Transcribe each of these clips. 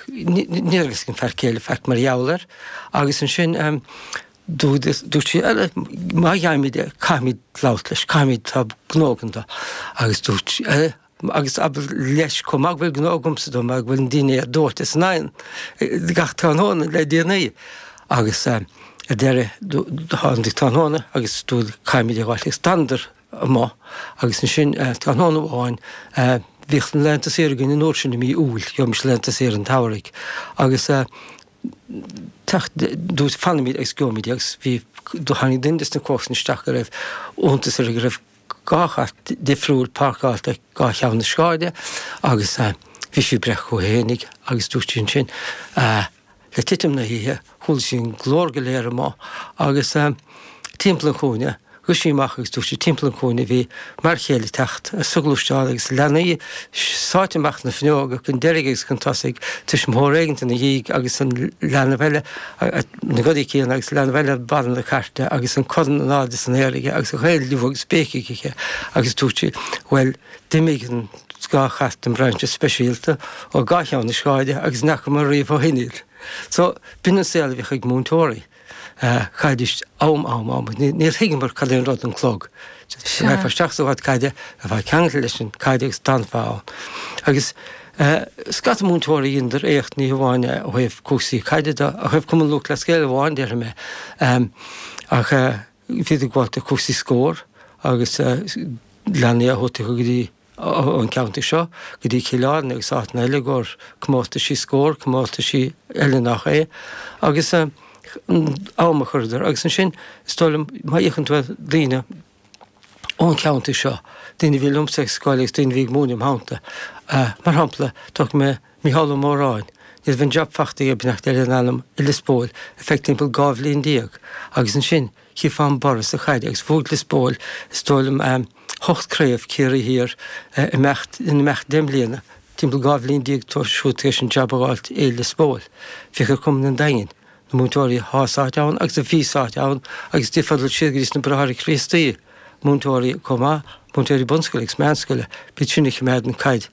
Ní raibh a fhios ag an fear céile faic mar gheall air agus ansin dúirt sí, má gheibhimid é, caithfimid labhairt leis, caithfimid tá gnó againn dó. Agus dúirt sí, agus abair leis chomh maith go bhfuil gnó agamsa dó mar go bhfuil an dinnéar dóite san oigheann, gach tráthnóna le déanaí. Agus ar deireadh tháinig tráthnóna agus caithfimid é a ghabháil agus d'fhanadar amuigh. Agus ansin, tráthnóna amháin, bhíodh laethanta saoire againn an uair sin i mí Iúil, gheobhaimis laethanta saoire an tsamhraidh, agus dúirt, fanaimid agus gheobhaimid é. Agus bhí, tháinig duine des na comharsana isteach go raibh iontas air go raibh dhá chairt difriúil páirceáilte ag dhá cheann na sráide agus bhí sé ag breith chuige fhéinig agus dúirt sí ansin, Le titim na hoíche, chuala sí an glór go léir amuigh agus timpeall an chúinne. Rith sí amach agus dúirt sí timpeall an chúinne a bhí m'fhear céile ag teacht sa ghluaisteán agus leanaí sáite amach na fuinneoga chun deiridh agus chun tosaigh, tuismitheoir éigint ina dhiaidh agus an leanbh eile, na gadaí céanna agus leanbh eile ar barra na cairte agus an corn in airde san aer aige agus a ghaol liú agus béicigh acu agus dúirt sí, bhuel, D'imigh an dá chairt den bhrainse speisialta ó dhá cheann na sráide agus ní fheacamar riamh ó shin iad. So, b'in an saol a bhíodh ag múinteoirí. Cad is am, am, am, níor thuigeamar cad é an rud an clog. Raghfá isteach sa ghort caide, bheifeá ceangailte leis an gcaid agus d'fhanfá ann. Agus scata múinteoirí dheineadar éacht ní hamháin ó thaobh cúrsaí caide do, ach ó thaobh Cumann Lúthchleas Gael amháin, déarfaidh mé. Ach. Bhídís ag gabháilt do cúrsaí scór agus leanaí á thabhairt acu go dtí, ón ceantar seo, go dtí Cill Airne agus áiteanna eile i gcomhair comórtaisí scór, comórtaisí eile nach é, agus am a chuireadar. Agus ansin, is dóigh liom, má fhéachann tú ar daoine ón cheantar seo, daoine a bhí liomsa ag scoil agus daoine a bhí ag múineadh im theannta, mar shampla, tógfaidh mé Mícheál Ó Móráin, Ní raibh an jab fachta aige ach deir an ainm i Lios Póil ar feadh timpeall dhá bhliain déag agus ansin chífeá an borradh sa chaid agus bhuaigh Lios Póil is dóigh liom eh ocht craobh Ciarraí thiar eh imeacht in imeacht deich mbliana, timpeall dhá bhliain déag tar siúd tar éis an jab a fháilt i Lios Póil. Féach ar Cumann an Daingin, na múinteoirí atá sáite ann agus a bhí sáite ann agus d'fhéadfá dul siar go dtí sna Bráithre Críostaí, múinteoirí chomh maith, múinteoirí bunscoile agus meánscoile, b'iad sin a choimeád an caid.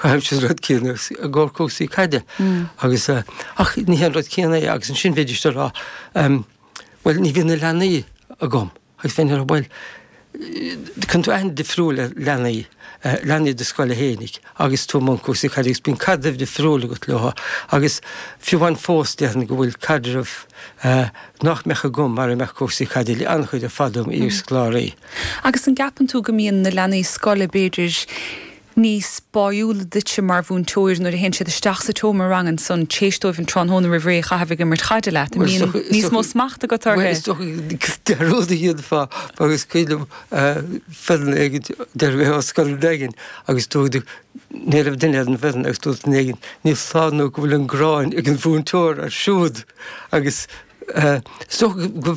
Chaithfeadh siad an rud céanna i gcomhair cúrsaí caide agus, ach ní hé an rud céanna é agus ansin bheidís ag rá bhuel ní bhíonn na leanaí agam agus bheinn ag rá bhuel cuireann tú aithne difriúil ar leanaí, leanaí do scoile fhéinig agus tú i mbun cúrsaí caide agus bíonn caidreamh difriúil agat leo agus fiú amháin fós déarfainn go bhfuil caidreamh nach mbeadh agam mara mbeadh cúrsaí caide le an-chuid ar fad dom iar-scoláirí. Agus an gceapann tú go mbíonn na leanaí scoile b'fhéidir níos báiúla duitse mar mhúinteoir nuair a théann siad isteach sa tseomra ranga ansan téis dóibh an tráthnóna roimh ré a chaitheamh ag imirt caide leat, an mbíonn níos mó smacht agat orthu? Bhuel, is dócha de rud a dhéanfá agus cuimhin liom foireann éigin deir mé ó scoil éigin agus dúirt ní raibh duine ar an bhfoireann agus dúirt duine éigin ní foláir nó go bhfuil an gráin ag an mhúinteoir air siúd agus is dócha go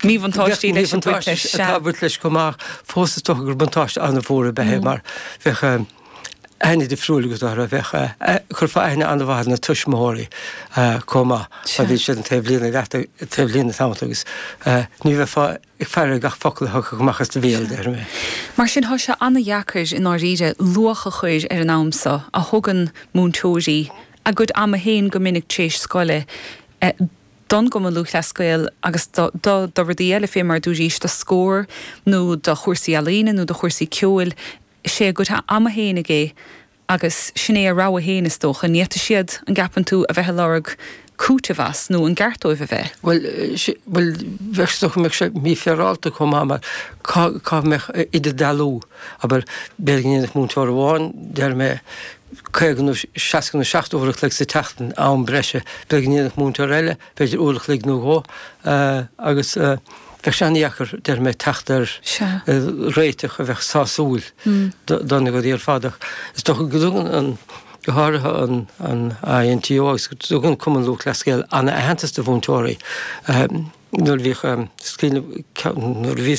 míbhuntáistí leis an bpáirt leis. Bheadh míbhuntáistí ag baint leis chomh maith, ach is dócha gur buntáiste an-mhór a bheadh air mar bheadh aithne difriúil agat orthu, bheadh, chuirfeá aithne an-mhaith ar na tuismitheoirí chomh maith má bhíonn siad an taobh líne leat, taobh líne tamall agus ní bheifeá ag faire gach focal a thiocfadh amach as do bhéal, déarfainn. Mar sin tá sé an-deacair i ndáiríre luach a chur ar an am seo a thugann múinteoirí a gcuid ama féin go minic tar éis scoile do. don gCumann Lúthchleas Gael agus do rudaí eile fé mar a dúirt Aois, do scór nó do chúrsaí ealaíne nó do chúrsaí ceoil, is é a gcuid ama féin agaibh é agus sin é a rogha féin, is dócha. Ní fhéadfadh siad, an gceapann tú, a bheith ag lorg cúitimh as nó an gceart dóibh a bheith? Bhuel, bhuel, bheadh, is dócha go mbeadh sé mífhéarálta chomh maith mar cá, cá mbeadh idirdhealú, abair, b'fhéidir go ndéanfadh múinteoir amháin, deir mé, 50 nó 60 nó 70 uair an chloig sa tseachtain, am breise. Bheadh go ndéanfadh múinteoir eile, b'fhéidir uair an chloig nó dhó, agus bheadh sé an-deacair, déarfainn, teacht ar réiteach a bheadh sásúil do na daoine ar fad. Ach is dócha go dtugann an, go háirithe an INTO agus go dtugann Cumann Lúthchleas Gael an-aitheantas do mhúinteoirí. Nuair a bhíodh scoil, nuair a bhí.